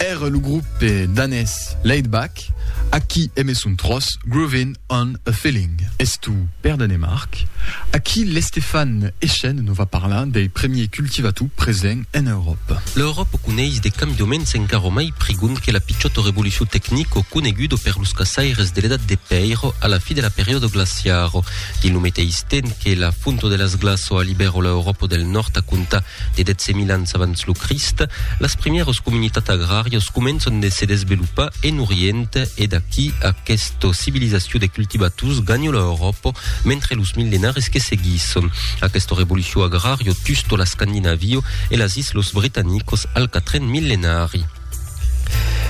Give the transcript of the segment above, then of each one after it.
Ère lo grope danés Laidback a qui eme son tròç Groovin' on a Feeling. Estó per Danemarc. Aquí l'Estefan Echen nos va parlar dei premiers cultivators presents en Euròpa. L'Euròpa coneis de cambioments encara mai prigonds que la pichòta revolucion tecnico coneguda per los caçaires de l'Edat de Pèir a la fi de la periòda glaciara. Dins lo meteis temps que la fonta de las glaças alibèra l'Euròpa del Nòrd a contar De 12.000 ans abans lo Crist, las primièras comunitats agràrias començan de se desvelopar en Orient e d'aquí aquesta civilizacion de cultivators ganha l'Euròpa mentre los millenaris que seguisson aquesta revolucion agrària tusto l'Escandinavio e las islas britanicas al quatren millenari.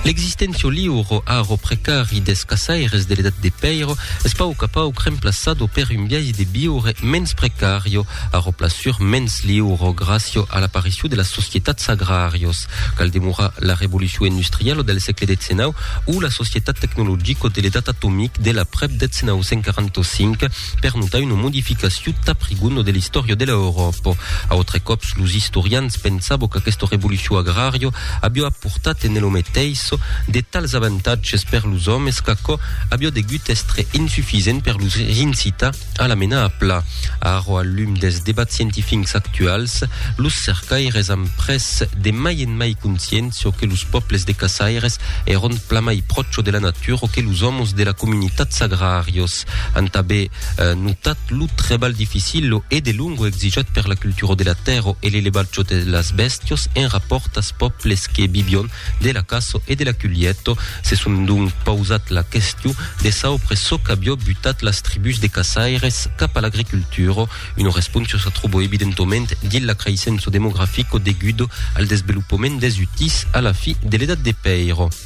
L'existentio liuro aro precari des caçaires de l'edat de pèiro es pauc a pauc remplaçado per un biais de viure mens precario, aro plasur mens liuro gràcio a l'aparicion de las societats agràrios. Cal demorar la revolucion industrialo del sègle xix o la societat tecnologico de l'edat atomic de l'aprèp 1945, per notar una modificacion tà prigun de l'istòria de l'Euròpa. Autre còps, los istorians pensabo qu'aquesta revolucion agrario avió aportat en elo meteis de tals avantatges per los òmes qu'aquò avió degut èstre insufisent per los incitar a la menar a pla. Ara, al lum dels debats scientifincs actuals, los cercaires an pres de mai en mai consciéncia que los pòbles de caçaires èron plamai pròcho de la natura que los òmos de la comunitats agrarios. Mas an tanben notat lo trebalh dificil e de longo exijat per la cultura de la tèrra e l'elevatge de las bèstias en rapòrt als pòbles que vivion de la caça e de la culheta. Se son donc pausat la question de saupre çò qu'avió butat las tribús de caçaires cap a l'agricultura. Una responsa se tròba evidentoment dins l'acraissença demografica deguda al desvelopament des utís a la fi de l'Edat de Pèira.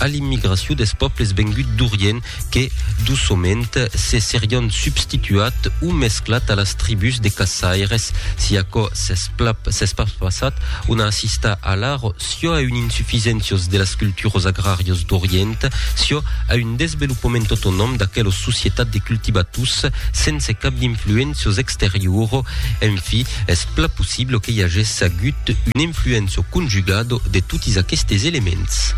a l'immigracion des pòbles venguts d'Orient que, doçament, se serián substituat o mesclat a las tribús de caçaires. Si aquò s'es pas passat, on a assistat alara siò a un insufisèncios de las culturas agràrias d'Orient, siò a un desvelopament autonòm d'aquelas societats de cultivators sense cap d'influéncias exteriora. En fi, es Pla possible que i agèsse agut un influenç o conjugado de totis aquestes elements.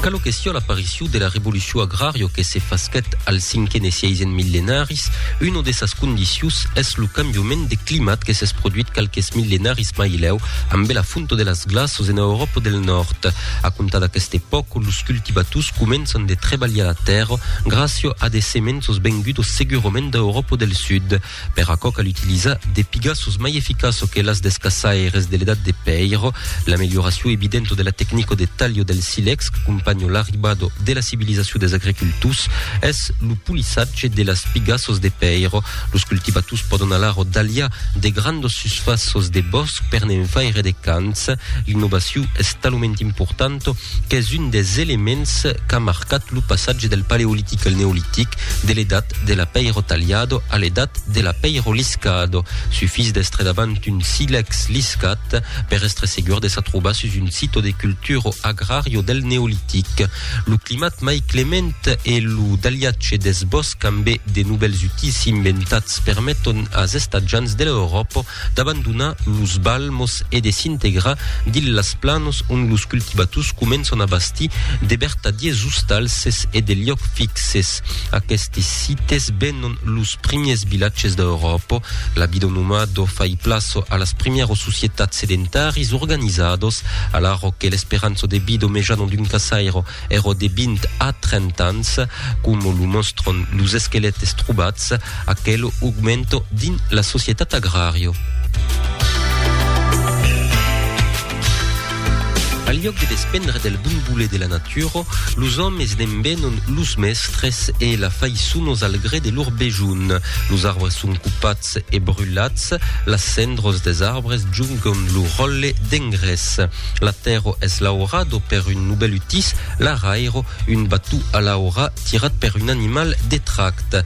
Calo que sió l'apariciu de la revoluciu agrario que se fasquèt al cinquen e sièisen millenaris, una de sas condicius es lo cambiument de climat que s'es produit qualques millenaris mai lèu Ambe la fonto de las glaços ena Euròpa del Nòrd. A comptar d'aquesta epòca, los cultivators començan de trebalhar la tèrra gràcia a de semenços vengudos segurament d'Euròpa del Sud. Per aquò cal utilizar de pigaços mai eficaços que las des caçaires de l'Edat de Pèir. L'amelioracion evidenta de la tecnica de talho del silex qu'acompanha l'arribada de la civilizacion des agricultors es lo polissatge de las pigaços de pèir Los cultivators pòdon alara talhar de grandas susfàças de bòsc per ne'n faire de cants. L'innovacion es talament importanta qu'es un des elements qu'a marcat lo passatge del Paleolitic al Neolitic, de l'edat de la pèira talhada a l'edat de la pèira liscada. Sufís d'èstre davant un silèx liscat per èstre segur de s'atrobar sus un sito de cultura agrària del Neolitic. Lo climat mai clement e lo daliatge deth bòsc ambe de novèls utisi inventats permeton as estatjants de l'Euròpa d'abandonar los balmos e de s'integrar dins las planos ont los cultivators començon a bastir de vertadiers ostalses e de liòcs fixes. Aquestes sites venon los primiers vilatges d'Euròpa, la bidonomà do fai plaço a las primièros societats sedentaris organizados, alara que l'esperança de vida mejana d'un caçaire èra de 20 a 30 ans, coma lo mòstran los esquelètes trobats, aquel augmenta dins la societat agrària. Al liòc de despendre del bon voler de la natura, los òmes ne'n venon los mèstres e la faisson os al gré de lor besonh. Los arbres son copats e brulats, las cendras des arbres jongam lo ròtle d'engrés. La tèrra es laurada per un novèl utís, l'araira, un bató a l'aura tirat per un animal de tracte.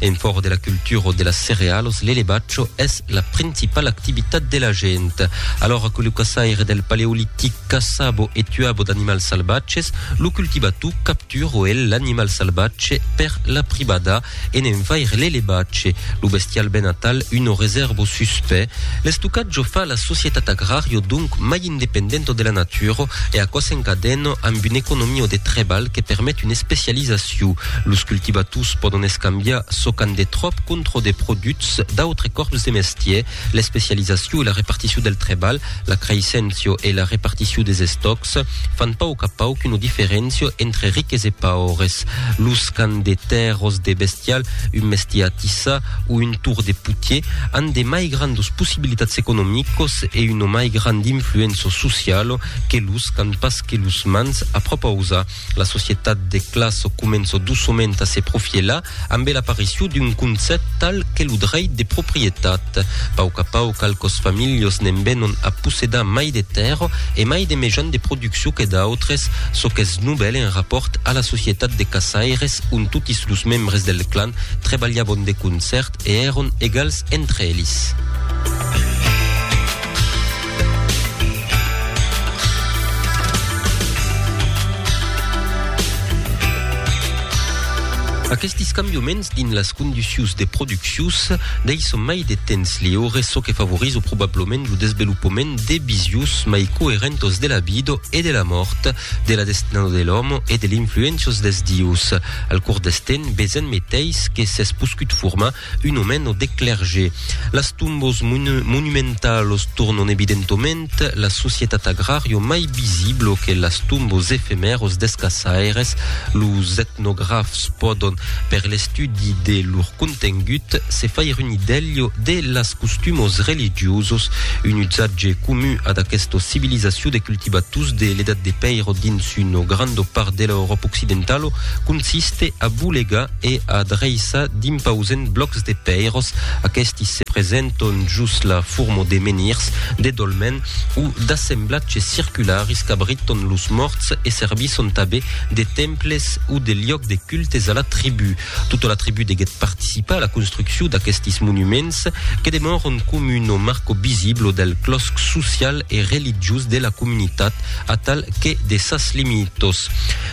En fòra de la cultura de las cerealos, l'elevatge es la principala activitat de la gent. Alora que lo caçaire del paleolitic caçabo e tuabo d'animals salvatges, lo cultivato capturo el l'animal salvatge per la privada e ne'n faire l'elevatge, lo bestial ben atal, una reserva suspè. L'estocatge fa la societat agrario donc mai independento de la natura e aquò s'encadena amb una economia de trebalh que permet una especializacion. Los cultivators pòdon escambiar çò qu'an de tròp contra de produchs d'autres còrps de mestièr. L'especializacion e la reparticion del trebalh, la creisséncia e la reparticion des estòcs fan pauc a pauc una diferéncia entre riques e paures. Los qu'an de tèrras de bestial, un mestièr a tissar, o un tour de putier an de mai grandos possibilitats economicos e una mai grand influença sociala que los qu'an pas que los mans a propausa. La societat de classa comença doçament a se profielar ambe l'aparicion d'un concèpt tal que lo dreit de proprietat. Pauc a pauc qualques familhas ne'n venon a possedar mai de tèrra e mai de mejans de produccion que d'autres, çò qu'es novèl en rapòrt a la societat de caçaires ont totis los membres del clan trebalhabon de concèrt e èron egals entre elis. Aquestis cambioments dins las conducius de produccius deisson mai de temps liure, çò que favorizo probablament lo desvelopament de visius mai coerentos de la vida e de la mòrt, de la destinada de l'òme e de l'influéncias dels dius. Al cors deth temps, Bezen meteis que s'es poscut formar un omeno de clerge. Las tombos monumentalos tornon evidentoment la societat agrario mai visiblo que las tombos efemèros des caçaires. Los etnografs pòdon, per l'estudi de lor contengut, se faire un idèlho de las costumos religiosos, un usatge comun ad aquestos civilizaciu de cultivators de l'Edat de Pèiro dins S'un o grando part dela Euròpa occidentalo consiste a bolegar e a dreissar d'impausent blòcs de pèiros, aquesti se presenton jos la forma de menhirs, de dolmen o d'assemblatges circularis qu'abriton los mòrts e servisson tabé de temples o de liòcs de cultes a la tribú. Tota la tribu deguèt participar a la construccion d'aquestis monuments que demòron com un o marco visiblo del clòsc social e religiós de la comunitat atal que de sas limitos.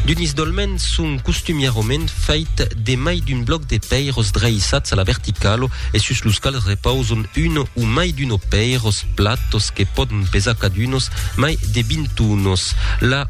D'unis dolmens son costumièrament fèit de mai d'un blòc de pèiros dreissats a la verticalo e sus los quals repauson uno o mai d'uno pèiros platos que pòdon pesar cadunos mai de 20 unos. La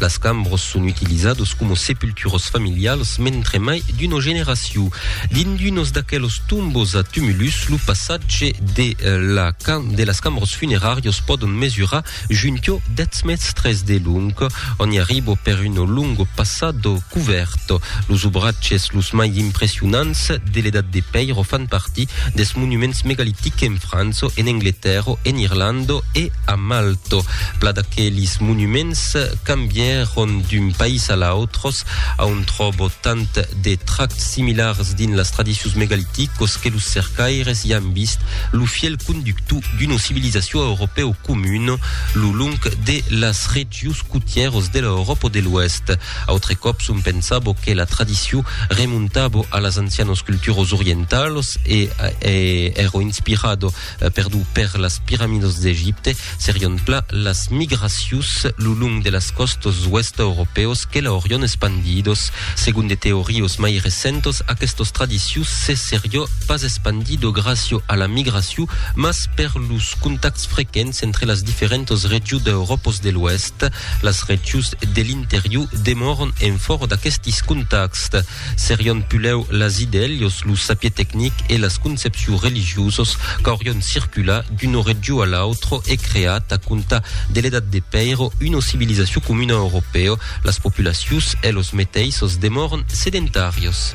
Las cambros son utilizados como sepulturos familials mentre mai d'uno generaciu. Dins d'unos d'aquelos tombos a tumulus, lo passatge de la de las cambros funerarios pòdon mesurar junto dètz mèstres de long, on i arribo per uno longo passado cuvèrt. Los obratges los mai impressionants de l'Edat de Pèiro fan partir des monuments megalitics en França, en Angletèrra, en Irlanda e A Malto, pla d'aquelis monuments cambièron d'un país a l'autros, a on tròbo tant de trachs similars dins las tradicions megaliticos que los cercaires i an vist lo fièl conductor d'una civilizacion europèo comuna lo long de las regions cotièros de l'Euròpa de l'Oèst. Autre còps on pensabo que la tradicion remontabo a las ancianos culturos orientalos e èro inspirado Perdut per las piramidos d'Egipte, serion plan las migracions lo long de las còstas oèsta europèos que l'aurion espandidos. Segon de teorios mai recentos, aquestos tradicions se serió pas espandido gràcio a la migracion, mas per los contacts frequents entre las diferentos regions d'Europos de l'Oèst. Las regions de l'interior demòron en fòro d'aquestis contacts. Serion pulèu las idèlios, lo sapier tecnic e las concepciu religiosos qu'aurion circula d'uno regiu a l'autro e creat a compta de l'edat de pèiro uno civilizaciu comuna europèo, las populacius e los meteissos demòron sedentarios.